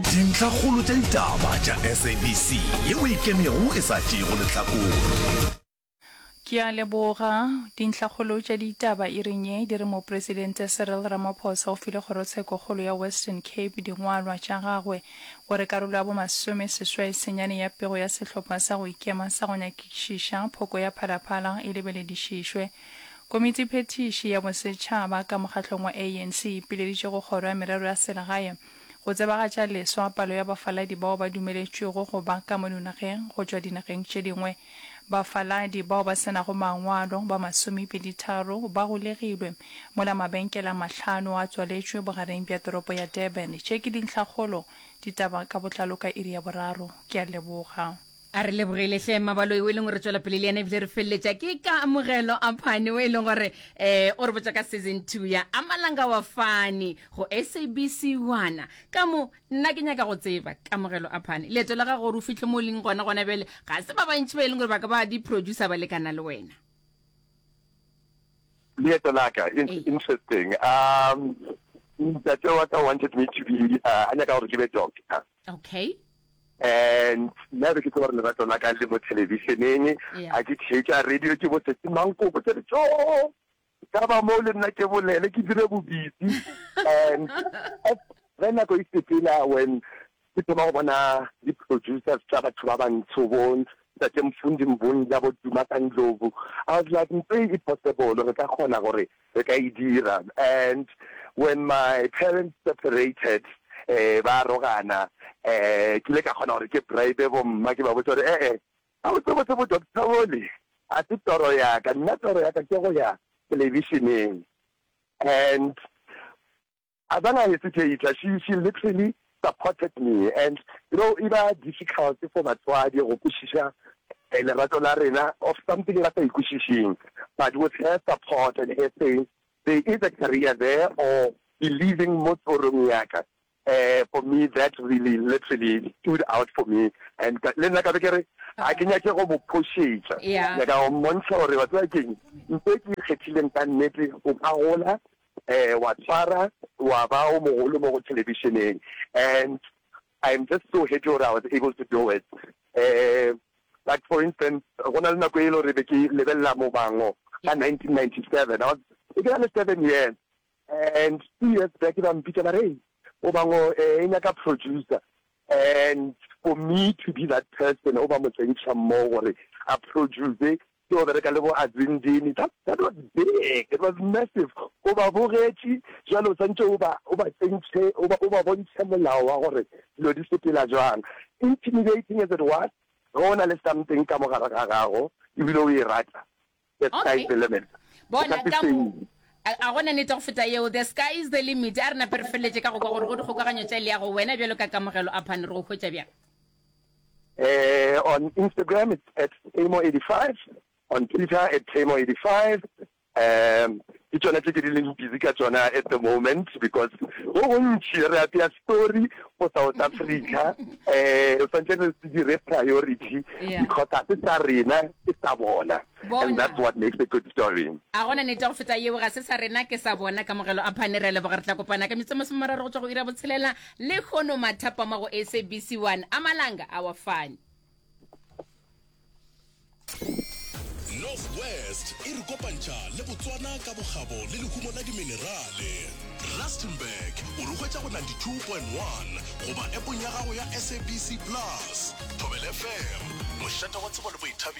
Dintlhakgolo tša ditaba tša SABC ye o ikemego e sa tšeego lehlakore. Ke a leboga. Dintlhakgolo tša ditaba iring ye di re Mopresidente Cyril Ramaphosa o file Kgorotshekokgolo ya Western Cape dingwalwa tša gagwe gore karolo ya bomasome seswai senyane ya pego ya sehlopha sa go ikema sa go nyakišiša phoko ya phalaphala e lebeledišišwe. Komiti Phethiši ya Bosetšhaba ka mokgahlong wa ANC e ipileditše go Kgoro ya Merero ya Selegae go tsebagatša leswa palo ya bafaladi bao ba dumeletšwego go ba ka mo dinageng go tšwa dinageng tše dingwe. Bafaladi bao ba se nago mangwalo ba masomepeditharo ba golegilwe mola mabenkele a mahlano a tswaletšwe bogareng bja toropo ya Durban. Tše ke dintlhakgolo. Ditaba ka botlalo ka iri ya boraro. Ke a leboga. a re lebogele hle mmabaloi o e leng gore tswela pele le yena ebile re feleletša ke ka amogelo a phane o e leng gore um o re botsa ka season two ya amalanga wa fane go sabc wana ka mo nna ke nyaka go tseba kamogelo a phane leeto la gago gore o fitlhe mo o leng gona gona bjale ga se ba bantši ba e leng gore ba ka ba di-producer ba lekana le wena leeto la ka e ee. interesting um ntate wa ka wanted me to be uh, a nyaka gore ke be doctor Okay. And nna be ke tlo gore lerato la ka le mo televisioneng a ke theetša radio ke bosetse mankoko ke re tso ka ba moo le nna ke bolele ke dire bobitsi and ge nako e sepela when ke thoma go bona di-producers tsa batho ba bantsho bo ntate mfundi mbonja bo duma ka ndlovu i was like ntse e possible re ka kgona gore Re ka e dira. And when my parents separated, ba arogana, ke ile ka kgona gore ke bribe bomma ke ba botša gore ee, gabotsebotse bo doctor bole ga se toro ya ka, nna toro ya ka ke go ya television-eng. And As an ieseteater, she she literally supported me and you know e ba difficult for batswadi go kwešiša lerato la rena of something ba sa e kwešišeng but with her support and her saying there is a career there or believing mo tsorong ya ka um for me that really literally stood out for me and ka le nna ka be ke re ga ke nyake go mo phošetša Yeah. nyaka go mmontšha gore batswadi keng mpe ke ikgethileng ka nnete o ka gola Wa tshwara wa ba o mogolo mo go thelebišeneng and I'm just so happy gore I was able to do it. Like for instance go na le nako e le gore be ke lebelela Mobango ka 1997, I was be ke na le seven years and two years back ba mpitša ba re, Mobango e nyaka producer and for me to be that person o ba motsentšha mmogo gore a produce Ke go bereka le bo Azindini, that, that was big, it was massive. O ba bogetše, bjale o swantše o ba, o ba tsentšhe, o ba, o ba bontšhe molao wa gore dilo di sepela bjang. Intimidating as it was, ge o na le something ka mo gare ga gago, e bile o e rata, the sky is the limit. Okay. O ka Bona se ka mo, fenye. a, a go na nete go feta yeo, the sky is the limit. A re nape re feleletše ka go kwa gore go dikgokaganyo tša leago, wena bjalo ka kamogelo, Aphane, re go hwetša bjang? Uh, on Instagram it's at Tamo85, on Twitter at Tamo85. Um, ke tsone tse ke di leng busy ka tsona at the moment because go gontši re apea story go south africa um re tshwanetse re dire priority because ga se sa rena ke sa bona Bona, a go na nete go feta yeo? Ga se sa rena ke sa bona kamogelo a phane. Re a leboga. Re tla kopana ka metso masome mararo go tšwa go iri ya botshelela lehono mathapama go SABC 1 a malanga a wa fane. North West e re kopantšha le Botswana ka bokgabo le lehumo la diminerale. Rustenburg o re hwetša go 92.1 goba App-ong ya gago ya SABC Plus. Thobela FM, mošate wa tsebo le boithabišo.